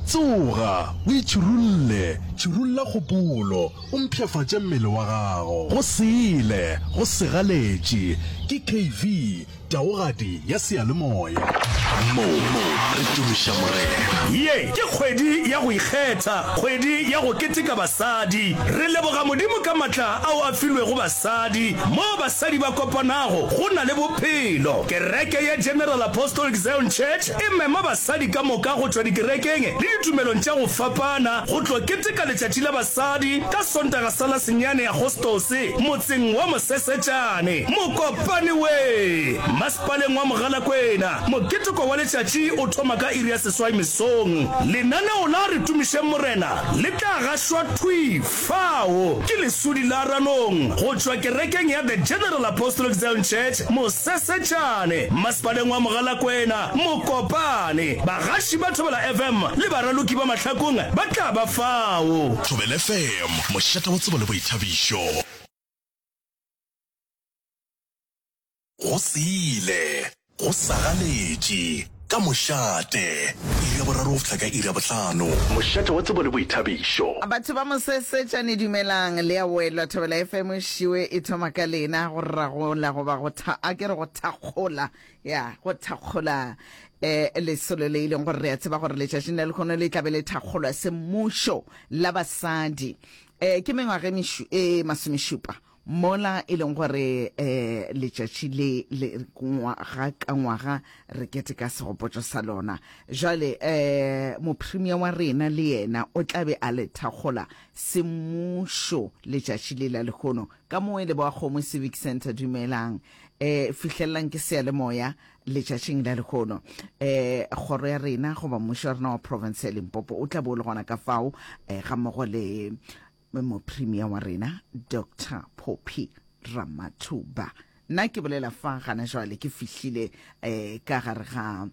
Tsoga, o itšhirulle, tšhirulla kgopolo, o mpshafatše mmele wa gago. Go sele, go segaletše. Ke KV, taogadi ya seyalemoya. Mo re tumiša Morena. Ye ke kgwedi ya go ikgetha, kgwedi ya go keteka basadi. Re leboga Modimo ka matla ao a filwego basadi. Moo basadi ba kopanago, go na le bophelo. Kereke ya General Apostolic Zion Church E mema basadi ka moka go tšwa dikerekeng le ditumelong tša go fapana go tlo keteka Letšatši la Basadi ka Sontaga sa la senyane Agostose motseng wa Mosesetšane, Mokopane we, Masepaleng wa Mogalakwena. Moketeko wa letšatši o thoma ka iri ya seswai mesong. Lenaneo la Re Tumišeng Morena le tla gašwa thwi Fao ke leswudi la Ranong go tšwa kerekeng ya The General Apostolic Zion Church Mosesetšane, Mmasepaleng wa Mogalakwena, Mokopane. Bagaši ba Thobela FM le baraloki ba mahlakong ba tla ba fao. Thobela FM, mošate wa tsebo le boithabišo. Go se ile. Go sagaletše. Ka mošate. Iri ya boraro go fihla ka iri ya bohlano. Mošate wa tsebo le boithabišo. Batho ba Mosesetšane dumelang, le a welwa. Thobela FM šiwe e thoma ka lena, go ragola goba go tha, a ke re go thakgola, ya, go thakgola eh, lesolo le e leng gore re a tseba gore letšatšing la lekgono le tlabe le thakgolwa semmušo la basadi. Eh, ke mengwaga e mišu, e masomešupa Mola e leng gore um letšatši le le ngwaga ka ngwaga re keteka segopotšo sa lona, jwale um Mopremia wa rena le yena o tla be a le thakgola semmušo letšatši le la lehono. Ka mo e leboga Kgomo Civic Centre, dumelang um fihlellang ke seyalemoya letšatšing la lehono. Um kgoro ya rena goba mmušo wa rena wa profense ya Limpopo o tla be o le gona ka fao um gammogo le Mopremia wa rena Doctor Poppy Ramathuba. Nna ke bolela fa gana jwale ke fihlile eh, ka gare ga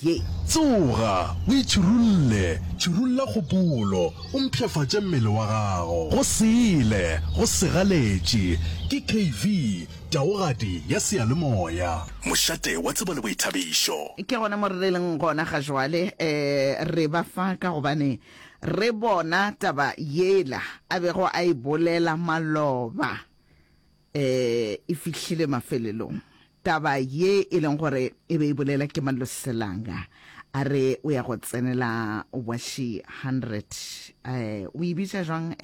ye. Tsoga, o itšhirulle, tšhirulla kgopolo, o mpshafatše mmele wa gago. Go sele, go segaletše. Ke KV, taogadi ya seyalemoya. Mošate wa tsebo le boithabišo. Ke gona mo re leng gona ga jwale, eh, re ba fa ka gobane Re bona taba yela a bego a e bolela maloba e e fihlile mafelelong, taba ye e leng gore e be e bolela ke Maloselanga a re o ya go tsenela Washi 100. O e bitša jwang?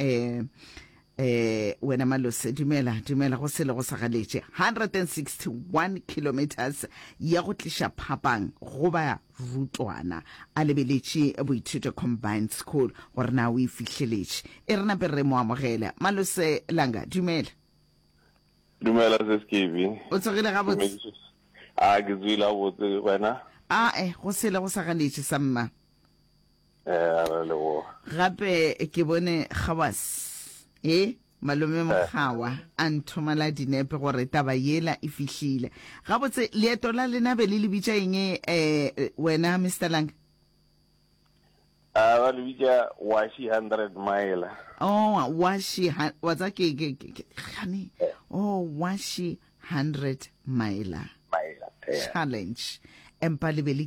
Ee, wena Malose, dumela, dumela, go selo go sa galetše. 161 kilometres ya go tliša phapang go ba rutwana. A lebeletše Boithuto Combined School gore na o e fihleletše. E re nape re mo amogele. Malose Langa, dumela. Dumela, Seskibi. O tsogile gabotse? A ke tsogile gabotse, wena? A e, go selo go sa galetše sa mma. gape ke bone gawas e malome mokgawa a nthomela dinepe gore taba yela e fihlile gabotse leeto la lena be le le bitša eng um wena mr lang a ba le bitša washi hundred mile oh washi wa tsa ke gane oh washi hundred mile challenge empa le be le